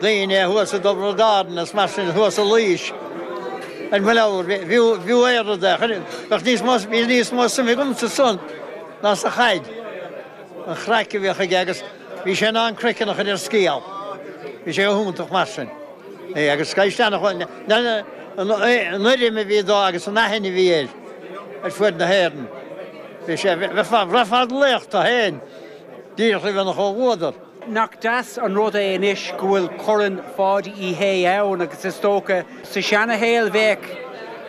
daoine thuas i dTyrone, Galway is mar sin, thuas i Laois ar mo leabhar. Bhí bhí aon rud a chuir bheadh níos mó bhí níos mó suim agamsa san ná sa chaid. An craic a bhíodh aige agus bhí sé in ann croiceann a chur ar scéal. Bhí sé go hiontach mar sin. Agus is aisteach an uirrim a bhí dó agus an aithne a bhí air ar fuaid na hÉireann. Bhí sé bhraithfeá an laoch tá féin díreach a bheith chomh bhuadar. Nach deas an rud é anois go bhfuil Corn Pháidí Uí Shé ann agus is dócha sa seanashaol bheadh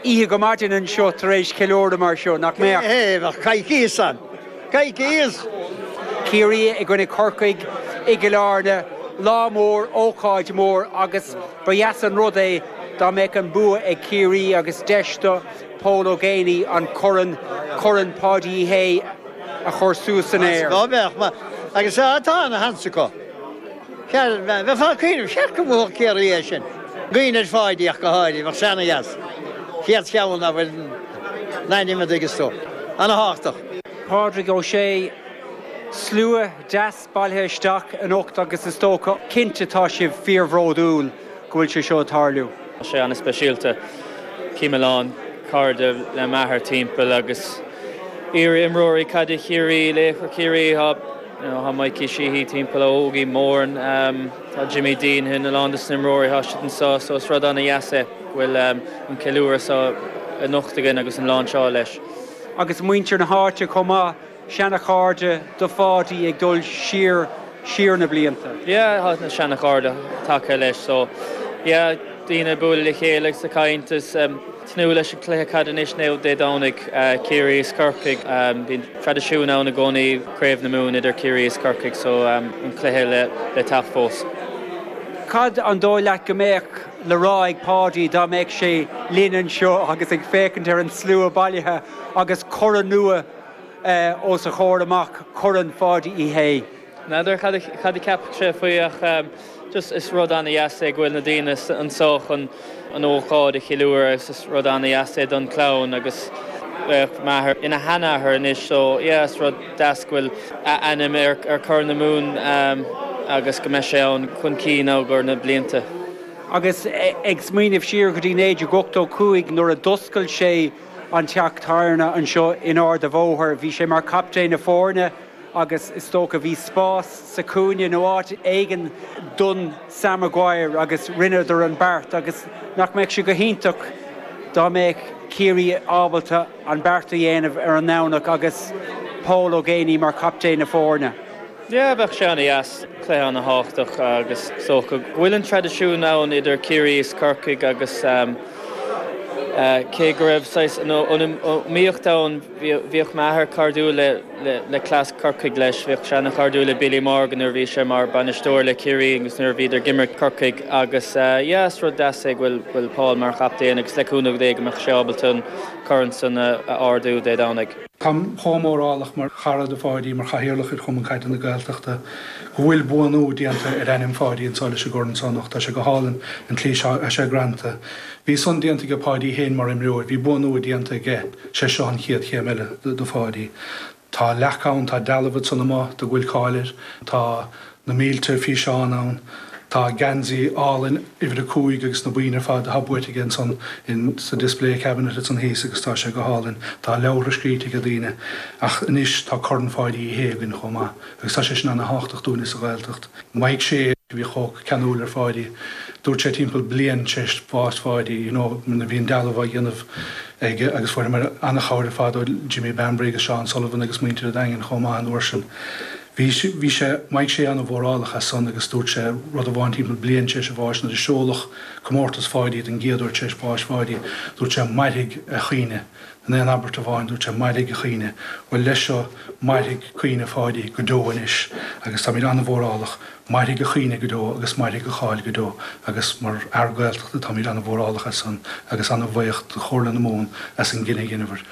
oíche go maidin anseo tar éis ceiliúradh mar seo, nach mbeadh? Hé, bheadh coicíos ann. Coicíos! Ciarraí i gcoinne Corcaigh i gCill Airne, lá mór, ócáid mór agus ba dheas an rud é dá mbeadh an bua ag Ciarraí agus deis do Pól Ó Géibheannaigh an corn, Corn Pháidí Uí Shé, a chur suas san aer. Ó bheadh, mar agus tá ana sheans acu, bhuel, bheifeá ag cuimhneamh, cheart go mbuafadh Ciarraí é sin. Cuimhneamh ar Pháidí ach go háirithe, bheadh seanaithne as. Chéad cheann ná fuil n'ainm i d'fhoigeas tú. Ana thábhachtach. Pádraig Ó Sé, slua deas. bailithe isteach anocht agus is dócha, cinnte tá sibh fíorbhródúil go bhfuil sé seo ag tarlú. Tá sé an-speisialta. Chím a lán cairde le m'athair timpeall agus iar-imreoirí caide Chiarraí, laochra Chiarraí, you know, tá Mikey Sheehy timpeall ó Ógie Moran, tá Jimmy Deenihan, a lán des na imreoirí, táid anseo so is rud ana-dheas é go bhfuil an ceiliúradh seo anocht againn agus an lánseáil leis. Agus muintir na háite chomh maith. seanachairde do Pháidí ag dul siar, siar na blianta. yeah tá na seanachairde tagtha leis so yeah daoine ag bualadh le chéile agus ag caint is tnúth leis an cluiche caide anois Dé Domhnaigh Ciarraí is Corcaigh bíonn traidisiún ann i gcónaí Craobh na Mumhan idir Ciarraí is Corcaigh so an cluiche le teacht fós. Cad an dóigh leat go mbeadh le rá ag Páidí dá mbeadh sé linn anseo agus ag féachaint ar an slua bailithe agus corn nua os a chomhair amach. Corn Pháidí Uí Shé. N'fheadar cad a cheapfadh sé faoi ach just is rud ana-dheas é go bhfuil na daoine anseo chun an ócáid a cheiliúradh agus is rud ana-dheas é don clann agus bheadh m'athair ina sheanathair anois so yeah is rud deas go bhfuil a ainm ar Chorn na Mumhan agus go mbeidh sé ann chun cinn i gcomhair na blianta. Agus ag smaoineamh siar go dtí 1985 nuair a d'oscail sé, an teach tábhairne anseo in Ard an Bhóthair. Bhí sé mar captaen na foirne agus is dócha bhí spás sa cúinne nó áit éigin don Sam Maguire agus rinneadar an beart agus nach mbeadh sé go hiontach dá mbeadh Ciarraí ábalta an beart a dhéanamh ar an nDomhnach agus Pól Ó Géibheannaigh mar captaen na foirne. Yeah, bheadh sé ana dheas, cluiche ana thábhachtach agus is dócha go bhfuil an traidisiún ann idir Ciarraí is Corcaigh agus cé go raibh saghas iomaíocht ann bhíodh m'athair cairdiúil le cleas Corcaigh leis, bhíodh sé ana chairdiúil le Billy Morgan nuair a bhí sé mar bainisteoir le Ciarraí agus nuair a bhíodar ag imirt Corcaigh agus yeah, is rud deas é go bhfuil Paul mar chaptaen agus le cúnamh Dé go mbeadh sé ábalta an corn san a ardú Dé Domhnaigh. Táim chomh mórálach mar chara do Pháidí, mar Chathaoirleach ar Chumann Caide na Gaeltachta, go bhfuil buanú déanta ar ainm Pháidí anso leis an gcorn so anocht. Tá sé go hálainn, an tslí atá sé greanta. Bhí san déanta aige Páidí fhéin mar imreoir, bhí buanú déanta aige, sé seo an chéad chéim eile do Pháidí. Tá leacht ann, tá dealbh ansan amuigh dó go bhfuil cáil air, tá. na mílte físeán ann. Tá an geansaí álainn uimhir a cúig agus na boinn ar fad atá buaite aige ansan in sa display cabinet ansan thíos agus tá sé go hálainn. Tá leabhartha scríte aige daoine. Ach anois tá Corn Pháidí Uí Shé againn chomh maith agus tá sé sin ana thábhachtach dúinne sa Ghaeltacht. Mike Shea a bhí chomh ceanúil ar Pháidí. Dúirt sé timpeall bliain t'réis bhás Pháidí you know nuair a bhí an dealbh á dhéanamh aige agus fuaireamar ana chabhair ar fad ó Jimmy Bambury agus Seán Sullivan agus muintir a' Daingin chomh maith an uair sin. Bhí, bhí sé, bheadh sé ana mhórálach as san agus dúirt sé rud amháin timpeall bliain, tar éis a bháis, nuair a seoladh comórtas Pháidí don gcéad uair tar éis bháis Pháidí, dúirt sé Mairfidh a chuimhne, in aon abairt amháin dúirt sé Mairfidh a chuimhne. Bhuel leis seo, mairfidh cuimhne Pháidí go deo anois agus táimid ana mhórálach, mairfidh a chuimhne go deo agus mairfidh a cháil go deo agus mar fhear Gaeltachta táimid ana mhórálach as san agus ana bhaoch do Chomhairle na Mumhan as an gcinneadh a dheineabhair.